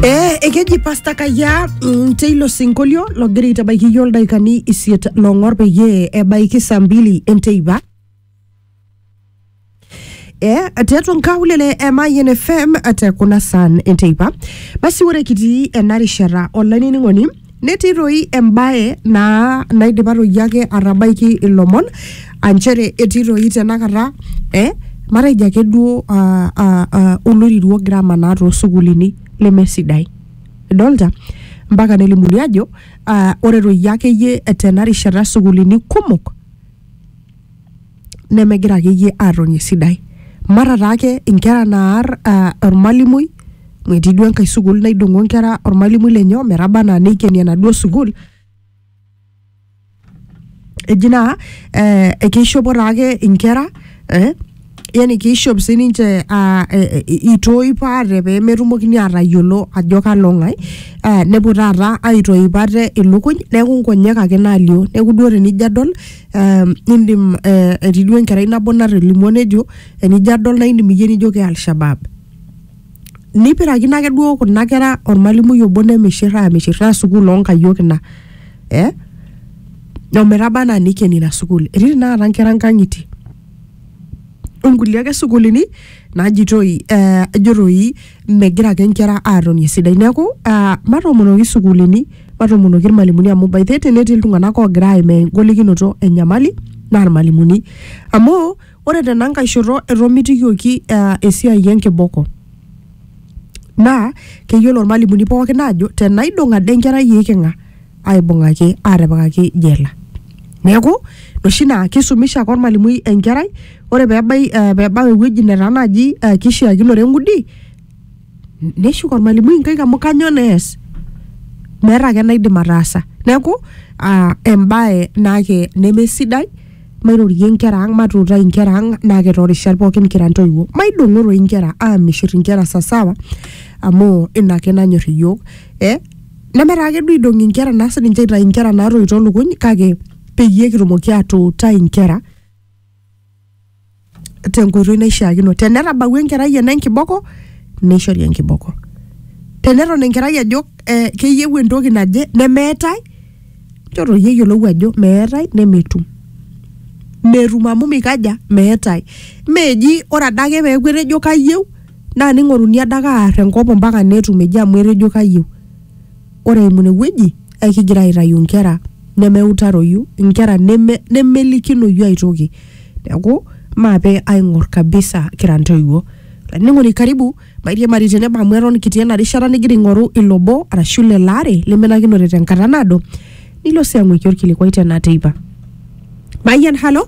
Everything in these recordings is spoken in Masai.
Eh, ekeji pasta kaya mm, teilo sinkolio logira aitabaiki iyio ildaikani isiet long'or peyie ebaiki saa mbili enteipa eh, tiatua nkaulele e Mayian FM te kuna saan enteipa basi ore kitii ena rishata olainining'oni Netii toi embae naa naidipa toi ake atabaiki ilomon aa nchere etii toi tenakata eh matejo ake duo ah, ah, ah, oloirirua ogira amanaa toosukuulini lemesidai idolta mpaka nelimuni ajo ah, ore toi akeyie tena rishata sukuulini kumok nemegira akeyie atoni esidai mara taake inkera naar uh, ormalimui amu etii duo enkae sukuul naidong'o inkera ormalimui lenye ometaba anaa neikeni enaduo sukuul eji naa eh, ekeishopo taake inkera eh, yani kiishop sininche ah, eh, eh, itoip ate pee metumokini aatayiolo ajo kalo ng'ae ah, nepuo taata aitoip ate ilukuny neeku nkonyek ake naalio neeku duo tenijo adol ah, indim eh, etii duo enkerai nabo natolimuo nejo enijo adol naa indim iyie nijo ke alshabab nipirakino ake duo kuna kera ormalimui obo nemishirra amishirra sukuul onkayiok ina eh? ometaba anaa nikeni ina sukuul etii tenakata nkera nkang'itie onkulie ake sukuulini naajitoi eh, ajo toi megira ake nkera aatoni esidai neeku ah, matoomonoki sukuulini matoomonoki irmalimuni amu by the way tenetii iltung'anak oogira aimaa engolikinoto enyamali naa irmalimuni amu ore tenankae shoto etomitikioki ah, esiai enkiboko naa keyiolo irmalimuni pookin aajo tenaidong ade enkerai iiking'a aibung'aki aatipikaki jela neeku oshi naa kisumisha ake ormalimui enkerai ore peebai eh, peebau ewueji netaa naaji eh, kishiakinore eng'udi neshuk ormalimui inkaik amu kanyoo nees meeta ake enaidim ataasa neeku ah, embae naake nemesidai mairorie inkera ang matuutai inkera ang naake toorishat pookin kira ntoiwuo maidong'o toi inkera aamishirr inkera sasawa amu ina ake nanyorr iyiook eh, nemetaa ake duo eidong'i inkera naa sininche aitayu inkera naatoito lukuny kake peyie kitumoki atuutai inkera tenkoitoi naishiakino tenetabawua enkerai ena enkiboko neishori enkiboko teneton enkerai ajo eh, keyieu entoki naje nemeetae nchoo iyie eyiolou ajo meetae nemetum metum amu mikaja meetae meji ore adake peeku etejo kayieu naa ning'oruni adake aar enkop mpaka netum eji amu etejo kayieu. Ore eimu ine wueji ekigira aitayu nkera nemeutaroyu, nkera neme nemelikinoyu ai toki. Neeku maape aing'or kabisa kira ntoiwuo. Olainining'oni karibu mairiamari tenebo amu eton kitii ena rishata nigira aing'oru ilo obo arashu lelo aare lemenakinote tenkata naado nilo sii ang'uiki orkilikuai tena teipa. Mayian halo?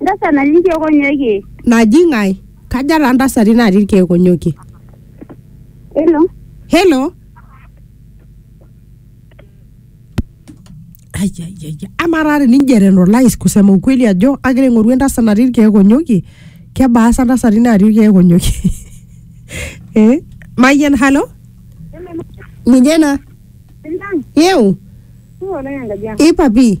Ndasa natii irkeek onyokie. naji ng'ae kaja taa ntasati natii irkeek onyokie Hello. helo ayayaya amaa taa tenijo etenolais kusema ukweli ajo agira aing'oru entasat natii irkeek onyokie kebaa sa ntasati natii irkeek onyokie eh? mayian halo ng'ijena Sintang. yeu Tuo oleng enkaji ang. ipapi